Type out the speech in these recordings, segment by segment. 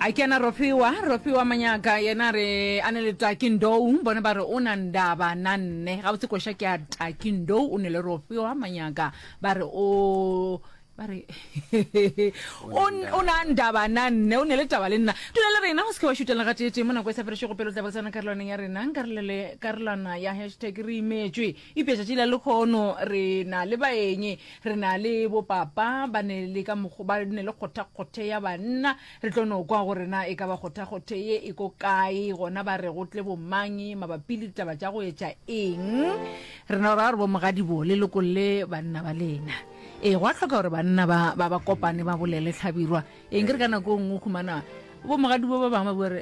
a kena rofiwa rofiwa manyaka yena re a ne le takindou bone ba re o na ndaba na nne ga botse koša ke a takindou o ne le rofiwa manyaka ba re o ba re o na ndaba na nne o ne le taba le nna dula le rena o se ke wa šutela ga tee tee mo nako e sa ferešego pelo tla ba tsena karolwaneng ya rena karolwana ya hashtag re imetswe Eupša tšatši la lehono re na le baeng, re na le bopapa ba ne le ka mokgo ba ne le kgothakgothe ya banna. Re tlo no kwa gore na e ka ba kgothakgothe ye e ko kae, gona ba re go tle bomang mabapi le ditaba tša go etša eng. Re na ra gore bomogadibo le lokolle banna ba lena. Ee, gwa hloka gore banna ba, ba, ba kopane ba bolele hlabirwa. Eng, ke re ka nako e nngwe o humana bomogadibo ba bangwe ba bua re,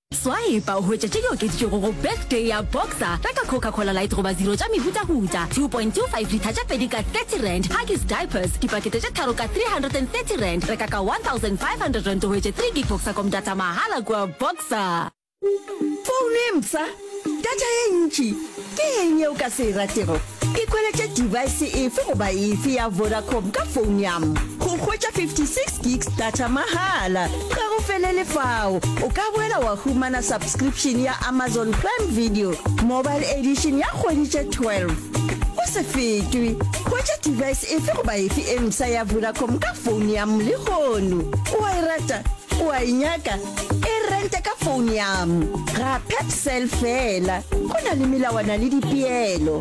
Swaepa o hwetša tše di okeditšwego go Birthday ya Boxer, reka Coca-Cola Light goba Zero tša mehutahuta, 2.25 litha tše pedi ka R30, Huggies Diapers, dipakete tše tharo ka R330, reka ka R1,500 o hwetše 3 gig Voxacom data mahala kua Boxer. Founo e mpsha, data ye ntši, ke eng ye o ka se e ratego? Ke kweletše device efe goba efe ya Vodacom ka phone ya m. Go hwetša 56 gigs data mahala. Ga go felele fao, o ka boela wa humana subscription ya Amazon Prime Video Mobile Edition ya kgwedi tše 12. O se fetwe, hwetša device efe goba efe e msa ya Vodacom ka phone ya m lehono. O a e rata? O a e nyaka? e rente ka phone yam ga pepsel fela go na le melawana le dipeelo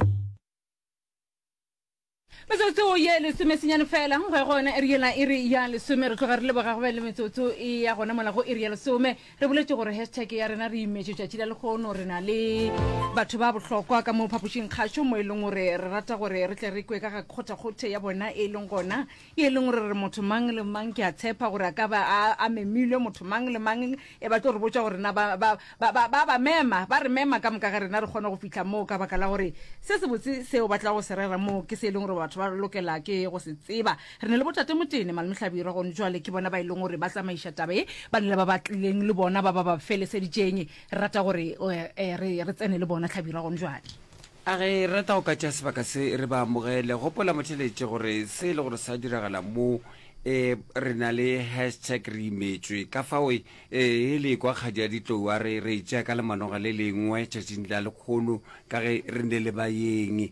metsotso ye lesome senyane fela go ya gona ere yela e re ya lesome re tloga re leboga go be le metsotso e ya gona mola go ere ya lesome re boletse gore hashtag ya rena re imetše tšatši la lekgono re na le batho ba bohlokwa ka mo phapošing kgašo mo e leng gore re rata gore re tle re kwe ka ga kgothakgothe ya bona e leng gona e leng gore re motho mang le mang, ke a tshepa gore a ka ba a, a memilwe, motho mang le mang, e ba tlo re botša gore na ba, ba, ba, ba, ba ba mema, ba re mema ka moka ga rena re kgone go fihla moo, ka baka la gore se sebotse seo ba tla go se rera moo ke se e leng gore batho ba lokela ke go se tseba. Re ne le Botate Motene, Malome Hlabirwa, gone jwale ke bona ba e leng gore ba tsamaiša taba ye, ba nile ba ba tlileng le bona, ba ba ba feleseditšeng. Re rata gore, uh, uh, re, re tsene le bona, Hlabirwa, gone jwale. A re rata go katša sebaka se re ba amogele. Gopola motheletše gore se e le gore sa diragala mo e re na le hashtag re imetšwe ka fao e e le kwa kgadi ya ditlou a re re e tšea ka lemanoga le lengwe tšatšing la lekgono ka ge re ne le bayeng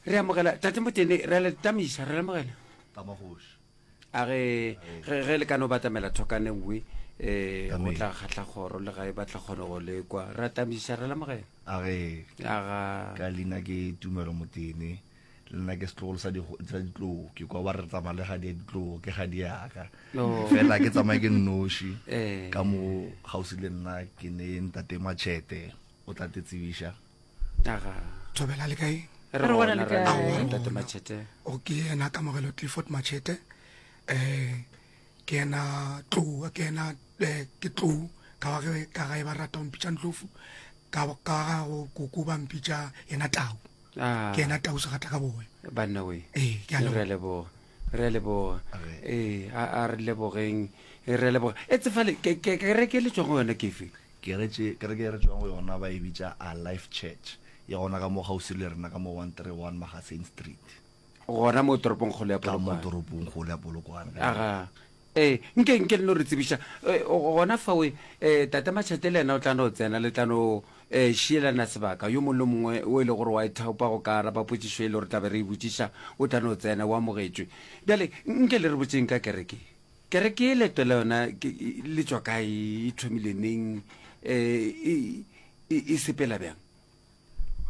re amogela tate motene re a le tatamiša re le amogela ka magoši a ge ge ge le ka no batamela thokane nngwe eh go Amen. tla kgatla kgoro le ga e batla kgone go lekwa re atamisa re lamogela a ge aga ka leina ke tumelo motene le nna ke setlogolo sa digo- sa ditlou ke kwa ba re tsamaya le gadi ya ditlou ke gadi yaka No. fela ke tsamaye ke nnoši Eh. ka mo gausi le nna ke ne ntate matšhete o tla te tsebiša aga thobela le kae re Re bona gona le re kae? na Aowa, le ntate gona. machete o ke ena kamogelo clifford machete um ke ena tlou ke ena eh, ke tlou ka wa ge- ka gae ba rata go mpitša ntlofu ka ba- ka ga go koko ba mpitša ena tau Ah, ke ena tau segatla ka bowe banna we Ee, ke a leboga. re a leboga re a leboga ee a a re lebogeng e re a leboga e tsefale ke- ke- kereke e le tswang go yona kefe kereke kereke e re tswang go yona ba e bitša a life church ya gona ka mo gausi le rena ka mo 131 magaseng street gona mo toropong kgolo ya ka mo polokwane toropong golo ya polokwane Aga. Ee, nke, nke le no re tsebiša e, gona fao. E, e, Tate Matšhate le yena o tla no tsena, le tla no e, šielana sebaka. Yo mongwe le mongwe o e le gore wa ithaopa go ka araba potšišo e le gore tla be re e botšiša, o tla no tsena, o amogetšwe. Bjale, nke le re botšeng ka kereke ye. Kereke ye, leeto la yona ke, le tšwa kae, e thomile neng, e, e, e, e sepela bjang?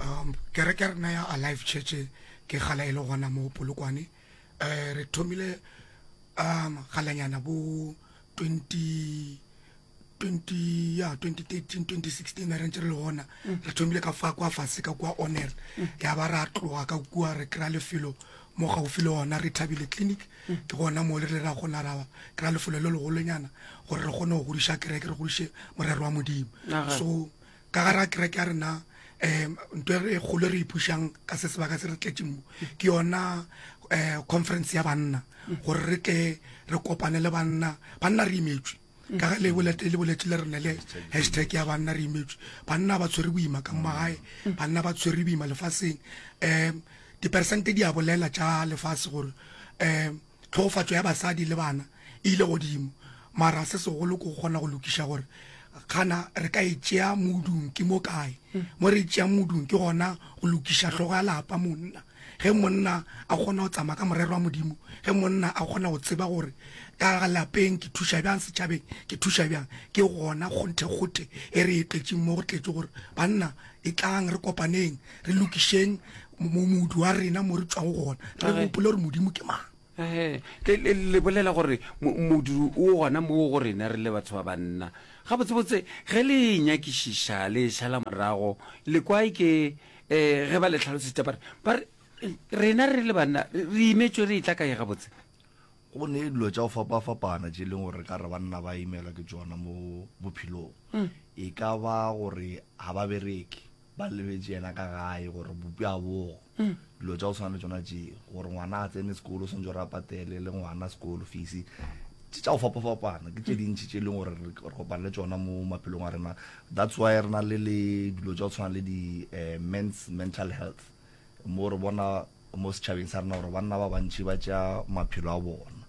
um kereke ya rena ya alive church ke gala e le gona mo polokwane um re thomile um galanyana bo 20 20 ya 2013 2016 re ntse re le gona mm. re thomile ka fa kwa fase ka kwa honor mm. ya ba ra tloga ka kua re kry-a lefelo mo gaufi le gona re thabile clinic mm. ke gona mo le re ra kgona ra kry-a lefelo le legolonyana gore re kgone go godiša kereke re godiše morero wa modimo so Ka gare ga kereke ya rena um nto e kgolo e re ipušang ka se sebaka se re tletšeng mo ke yona um conference ya banna gore re tle re kopane le banna banna re imetswe ka ge lebolete le boletse le rene le hashtag ya banna re imetswe banna ba tshwere boima ka magae banna ba tshwere boima lefaseng um diperesente di a bolela tša lefase gore um Tlhogofatšo ya basadi le bana e ile godimo, mara se segolo ke go kgona go lokiša gore gana re ka e tšea modung ke mo kae. Mo re e tšeang modung ke gona go lokiša hlogo ya lapa, monna. Ge monna a kgona go tsamaya ka morero wa Modimo, ge monna a kgona go tseba gore ka lapeng ke thuša bjang, setšhabeng ke thuša bjang, ke gona kgonthe-kgothe e re e tletšeng mo go tletše gore banna etlang re kopaneng, re lokišeng modu wa rena mo re tswago gona re gopole gore modimo ke mang le bolela gore modu o gona moo go rena re le batho ba banna ga botsebotse ge le e nyakišiša le e šala morago lekwae ke um ge ba le tlhalosetša bare bare rena re le banna re imetswe re e tla kae gabotse go ne dilo tša go fapa-fapana tše e leng gore ka re banna ba imelwa ke tsona mo bophelong mm. e ka ba gore ga ba bereke ba lebetše yena ka gae gore bopi a bogo mm. dilo tša go tshwana le tsona tše gore ngwana a tsene sekolo o swantse gore a patele le ngwana sekolo fisi tše tša go fapafapana ke tše mm. dintšhi tše e leng gore re kopane le tsona mo maphelong a rena that's why re na le le dilo tša go tshwana le di-mens eh, mental health mo re bona mo setšhabeng sa rena gore banna ba bantši ba tša maphelo a bona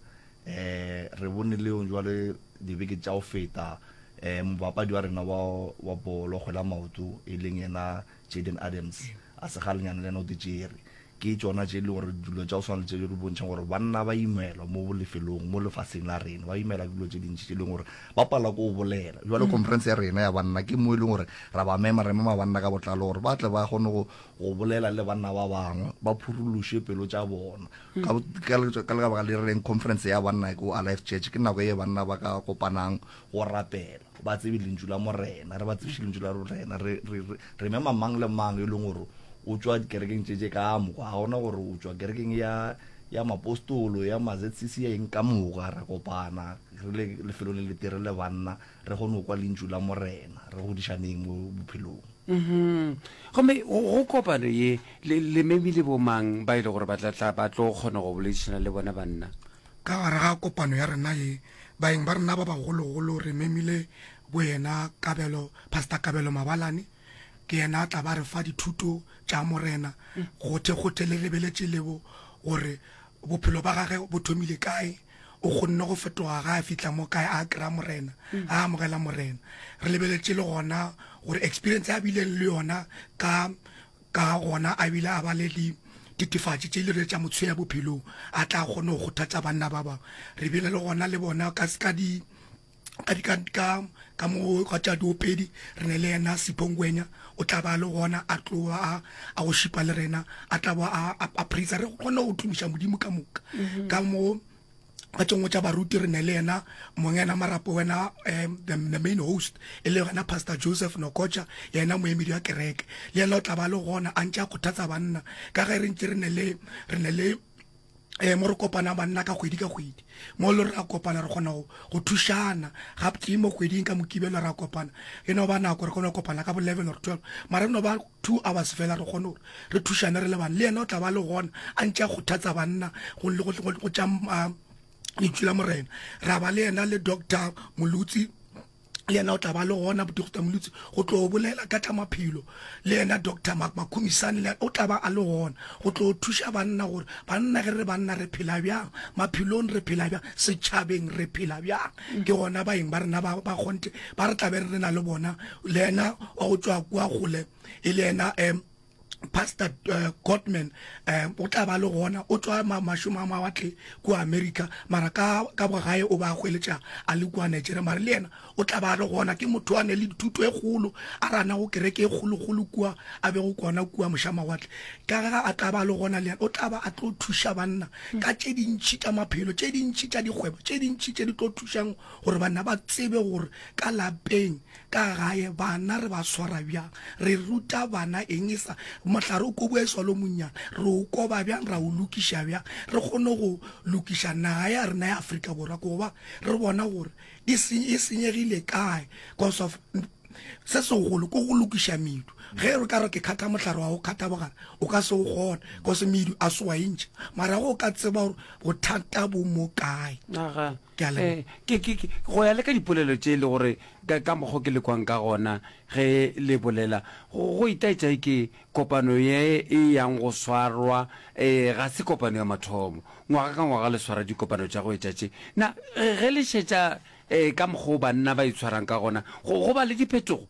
um re bone leong jwale dibeke tša go feta um mobapadi wa rena wa bolo kgwela maoto e leng yena jaden adams a segalenyana le yena o tetsere ke tsona tše e le gore dilo tša go swana le tše di bontšhang gore banna ba imelwa mo lefelong mo lefaseng la rena ba imelwa ke dilo tše dintši tše e leng gore ba pala ko o bolela jalo mm. conference ya rena ya banna ke mo e leng gore ra ba mema re mema banna ka botlalo gore ba tle ba kgone go bolela le banna ba bangwe ba phuruluše pelo tša bona ka lebaka le reng conference ya banna ko alife church ke nako ye banna ba ka kopanang go rapela ba tsebe lentšu la morena re ba tsebiše lentšu la morena re mema mang le mang e leng gore o tswa dikerekeng tše tše ka moka ga gona gore o tswa kerekeng ya ya mapostolo ya mazcc ya eng ka moka ra kopana re le lefelo le letere le banna re kgone go kwa lentšu la morena re godišaneng mo bophelong mm-hmm. gomme go kopano ye lememi le bomang ba e le gore ba tlatla ba tlo kgona go boledišana le bona banna ka gare ga kopano ya rena ye baeng ba rena ba bagologolo re memile bo yena kabelo pastor kabelo mabalane ke yena a tla ba re fa dithuto tša morena gothe gothe le lebeletše lebo gore bophelo ba gage bo thomile kae O kgonne go fetoga ge a fihla mo kae a kry-a Morena, a amogela Morena. Re lebeletše le gona gore experience e a bileng le yona ka ka gona a bile a ba le dititefatši tše e le tša mo tshweya bophelong, a tla kgone go kgothatša banna ba bangwe. Re bile le gona le bona ka di ka di ka ka ka mo ga tša diopedi re ne le yena siphongwenya o tla ba le gona a tloa a a go šipa le rena a tla ba a a praise re kgone go tumiša modimo ka moka mm-hmm. ka mo ka tšengwe tša baruti re ne le yena mongena marapo wena um the main host e le yona pastor joseph nokocha yena moemedi wa kereke le yena o tla ba le gona a ntse a kgothatsa banna ka ge re ntse re ne le um mo re kopana banna ka kgwedi ka kgwedi mo le ra kopana re kgona go thušana ga tee mo kgweding ka mokibelo ra kopana e no ba nako re kgona go kopana ka bo level or twelve mara e no ba two hours fela re kgone gore re thušane re le bane le yena o tla ba le gona a ntse a kgothatsa banna go tša um, lentšu la morena ra ba le yena le doctor molutsi le yena o tla ba le gona bodokta molutsi go tlo bolela ka tla maphelo le yena doctor makhumisane le o tla ba a le gona go tlo thuša banna gore banna ge re banna re phela bjang maphelong re phela bjang setšhabeng re phela bjang ke gona baeng ba rena ba kgonte ba re tlabe re na le bona le yena wa go tswa kua gole e le yena um pastor uh, eh, godman um eh, o tla ba le gona o tswa mašomo a mawatle kua america mara ka, ka bogae o ba hweletša a le kua nigeria mara le yena o tla ba le gona ke motho a ne le dithuto e kgolo a rana go kereke e kgolokgolo kua a bego kona kua moša mawatle ka ga a tla ba le gona le yena o tla ba a tlo thuša banna ka tše dintšhi tša maphelo tše dintšhi tša dikgwebo tše dintšhi tše di tlo thušang gore banna ba tsebe gore ka lapeng Ka gae bana re ba swara bjang? Re ruta bana eng? Esa mohlare o koboe swa lo monnyane. Re o koba bjang? Ra o lokiša bjang? Re kgone go lokiša naga ya rena ya Afrika Borwa goba re bona gore e e senyegile kae cos of se segolo ke go lokiša medu. Ge re ka re ke kgatha mohlare wa go kgatha bogare o ka se o kgone cos medu a se wa e ntšha. Mara ge o ka tseba gore bothata bo mo kae. go ya le ka dipolelo tše e le gore ka mokgwa ke le kwang ka gona ge le bolela go itaetša e ke kopano ye e yang go swarwa ga se kopano ya mathomo ngwaga ka ngwaga le swara dikopano tša go etša tše na ge le šetša ka mokgwa o banna ba itshwarang ka gona go ba le diphetogo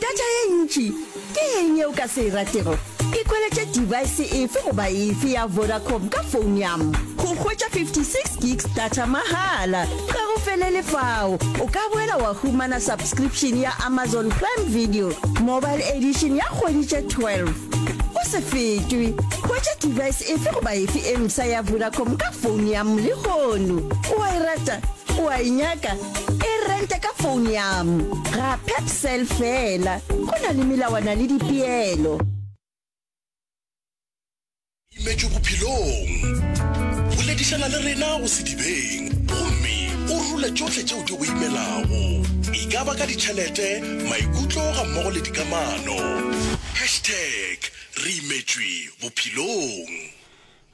Data ye ntši ke eng ye o ka se e ratego? Ke khweletše device efe goba efe ya Vodacom ka founo ya m. Go hwetša 56 gigs data mahala. Ga go felele fao, o ka boela wa humana subscription ya Amazon Prime Video Mobile Edition ya kgwedi tše 12. O se fetwe, hwetša device efe goba efe e msa ya Vodacom ka founo ya m lehono. O a e rata? O a e nyaka? e rente ka phone yam ga pepsel fela go na le melawana le dipeelo imetšwe bophelong boledišana le rena go sedibeng gomme o rule tšohle tšeo di go imelago e ka ba ka ditšhelete maikutlo ga mmogo le dikamano hashtag re imetšwe bophelong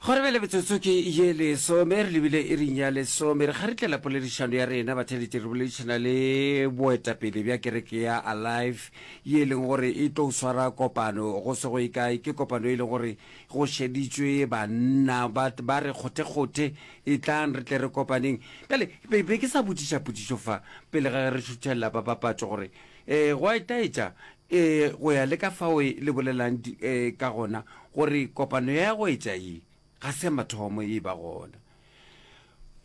Gore bjale metsotso ke ye lesome, re lebile iring ya lesome, re kgaritlela poledišano ya rena batheletši, re boledišana le boetapele bja kereke ya Alive ye e leng gore e tlo swara kopano go se go ye kae. Ke kopano e leng gore go šeditšwe banna ba ba re kgothekgothe, etlang re tle re kopaneng. Bjale be be ke sa botšiša potšišo fa pele ga ge re šuthelela ba papatšo gore um gwa itaetša Ee, go ya le ka fao le bolelang ka gona gore kopano ya go etša ye ga se ya mathomo e ba gona,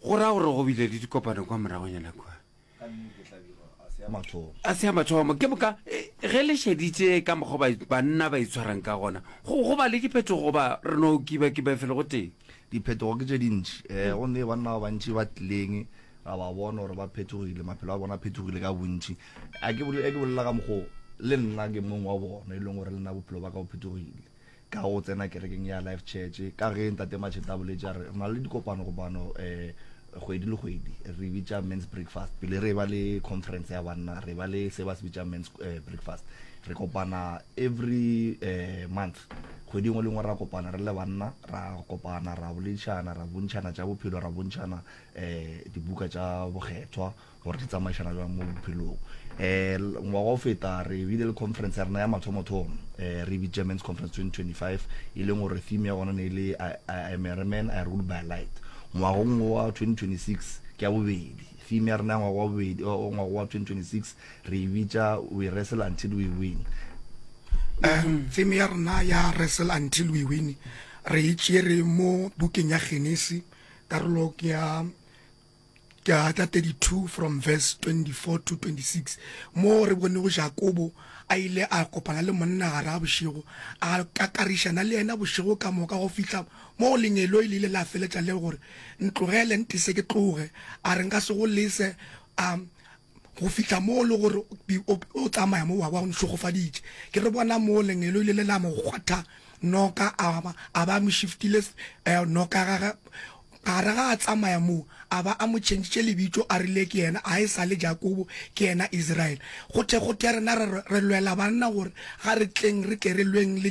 go ra gore go bile le dikopano kwa moragonyana kua. Ka nnete, e tla be ga se ya mathomo. Ga se ya mathomo. Ke moka ge le šeditše ka mokgwa ba, banna ba itshwarang ka gona, go, go ba le diphetogo goba re no kibakiba felo gotee? Diphetogo ke tše dintši. Gomme banna ba bantši ba tlileng ra ba bona gore ba phetogile, maphelo a bona a phetogile ka bontši. a ke bolela ka mokgoo le nna ke mong wa bona e leng gore le nna bophelo ba ka o phetogile ka go tsena kerekeng ya life church ka ge ntate macheta a boletse a re na le dikopano kopano um eh, kgwedi le kgwedi re bitša mans breakfast pele re ba le conference ya banna re ba le se ba se bitša mans eh, breakfast re kopana every uh, month kgwedi ngwe le ngwe ra kopana re le banna ra kopana ra boledišana ra bontšhana tša bophelo ra bontšhana um dibuka tša bokgethwa gore di tsamaišana bjang mo bophelong um ngwaga o feta re bile le conference ya rena ya mathomothomo um re bitša mans conference 2025 e leng gore theme ya gona ne e le im a man i rule by light ngwagong wa 2026 ke ya bobedi theme ya rena ya ngwaga wa bobedi ngwaga wa 2026 re e bitša we wrestle until we win um theme ya rena ya wrestle until we win re e tšere mo bukeng ya genesi karolo ke ya chapter 32 from verse 24 to 26 mo re bonego Jakobo a ile a kopana le monna gare ga bošego a kakarišana le yena bošego ka moka go fihla mo lenyelo e lile la feletša le gore ntlogele ntise ke tloge a re nka se go lese a go fihla mo le gore o tsamaya mo wa ba o nhlogofaditše ke re bona mo lengelo ile le la mo kgwatha noka a ba mo shiftile eh, noka gage gare ga a tsamaya moo a ba a mo tšhentšitše lebitso a rile ke yena a e sa le jakobo ke yena israele gothe gothe rena re lwela banna gore ga re tleng re tle re lweng le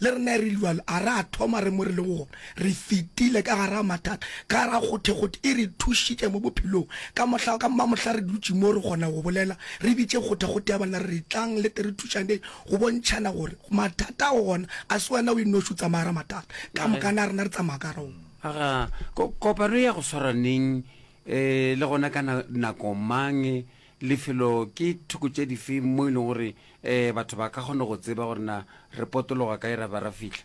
le rena re liwalo a re a thoma re mo re lego gona re fetile ka gara mathata ka gara kgothekgothe e re thušitše mo bophelong ka mohla ka mmamohla re dutše mo re kgona go bolela re bitše kgothekgothe ya banna re re tlang le tere thušaneng go bontšhana gore mathata go gona a se wena o e noši o tsamaya ra mathata ka mokana rena re tsamaya ka gara aga kopano ya go swara neng um le gona ka nako mang Lefelo, Ke thoko tše dife mo e leng gore batho ba ka kgona go tseba gore na re potologa kae ra ba ra fihla?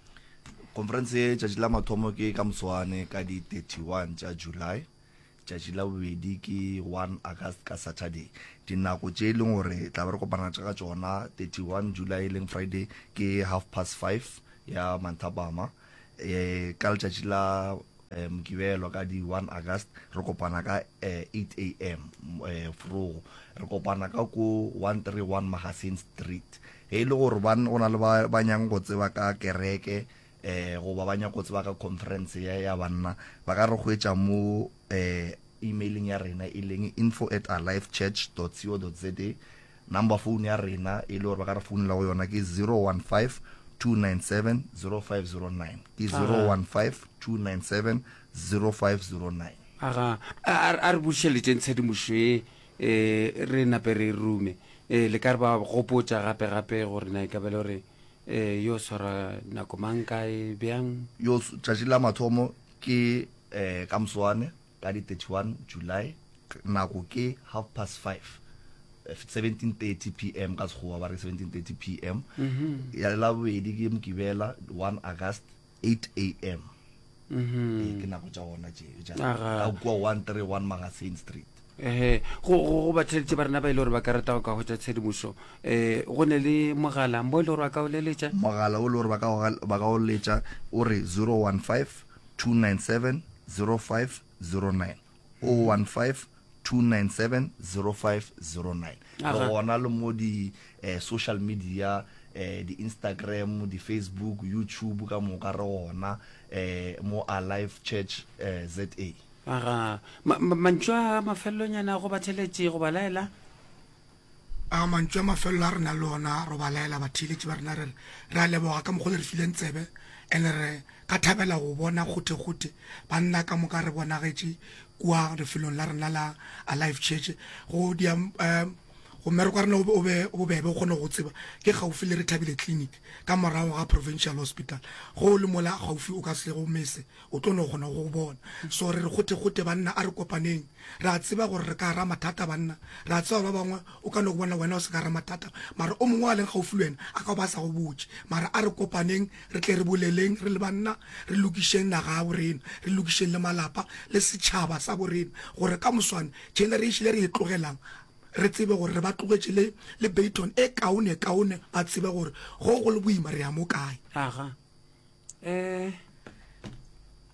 Khonferense ye tšatši la mathomo ke ka moswane ka di 31 tša July, tšatši la bobedi ke 1 August ka Saturday. Dinako tše e leng gore tla be re kopana ka tšona 31 July e leng Friday ke half past five ya manthapama, ka letšatši la Eh, mokibelo ka di 1 august re kopana ka eh, 8 am eh, frogo re kopana ka ko 131 magazine street ge e le gore go na le ba nyang go tseba ka kereke eh goba ba nyang go tseba ka conference ya ya banna ba ka re go etša mo eh emailing ya rena e leng info at alivechurch co za Number phone ya rena e le gore ba ka re founela go yona ke 0152970509 ke 0152970509. Aga, a, a, a re bušeletšeng tshedimošo ye e re nape re e rume. E, le ka re ba gopotša gape gape gore na e ka ba le gore e, yo swara nako mang kae bjang? Yo tšatši la mathomo ke e, ka moswane. Ka di 31 July, nako ke half past five, 17:30 pm ka Sekgowa ba re 17:30 pm, ya Labobedi ke Mokibela 1 August 8 am. Ee, ke nako tša gona tše tša Aga. ka kua 131 Magazine Street. ehe go go go batheletše ba rena ba e le gore ba ka rata go ka hwetša tshedimošo um go ne le mogala mo e le gore ba ka o leletša Mogala o le gore ba ka o gal- ba ka o letša o re 015 015-297-0509, 015-297-0509. Re gona le mo di-social media, di-Instagram, di-Facebook, YouTube, ka moka re gona mo Alive Church ZA. Aga. Mantšu a mafelelonyana a go batheletše go ba laela? A mantšu a mafelelo a re nang le ona ro ba laela batheeletši ba rena re re, Re a leboga ka mokgwa le re fileng tsebe, and re ka thabela go bona kgothekgothe banna ka moka re bonagetše kua lefelong la rena la Alive Church. Go dia um go mmereko wa rena o be o be bobebe o kgone go go tseba ke kgaufsi le Rethabile Clinic ka morago ga Provincial Hospital. Ge o le mola gaufi o ka se go mese, o tlo no kgona go go bona. So re re kgothekgothe banna a re kopaneng. Re a tseba gore re ka gara mathata, banna. Re a tseba ba bangwe o ka no go bona wena o se ka gara mathata, mara o mongwe a leng gaufi le wena a ka ba a sa go botše. Mara a re kopaneng re tle re boleleng re le banna, re lokišeng naga ya borena, re lokišeng le malapa le setšhaba sa borena, gore ka moswane generation e re e tlogelang re tsebe gore re ba tlogetše le le baton e kaonekaone, ba tsebe gore ge go le boima re ya mo kae. Aga. Eh.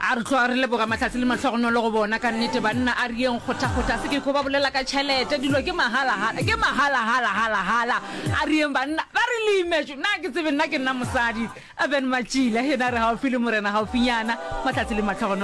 A re tloga re leboga mahlatse le mahlogonolo go bona. Ka nnete, banna a re yeng kgothakgotha. Se ke ko ba bolela ka tšhelete, dilo ke mahalahala, ke mahalahala, halahala. A re yeng banna, ba re le imetšwe. Nna ga ke tsebe, nna ke nna mosadi. Urban Matšila, yena a re gaufi le morena, gaufinyana. Mahlatse le mahlogonolo.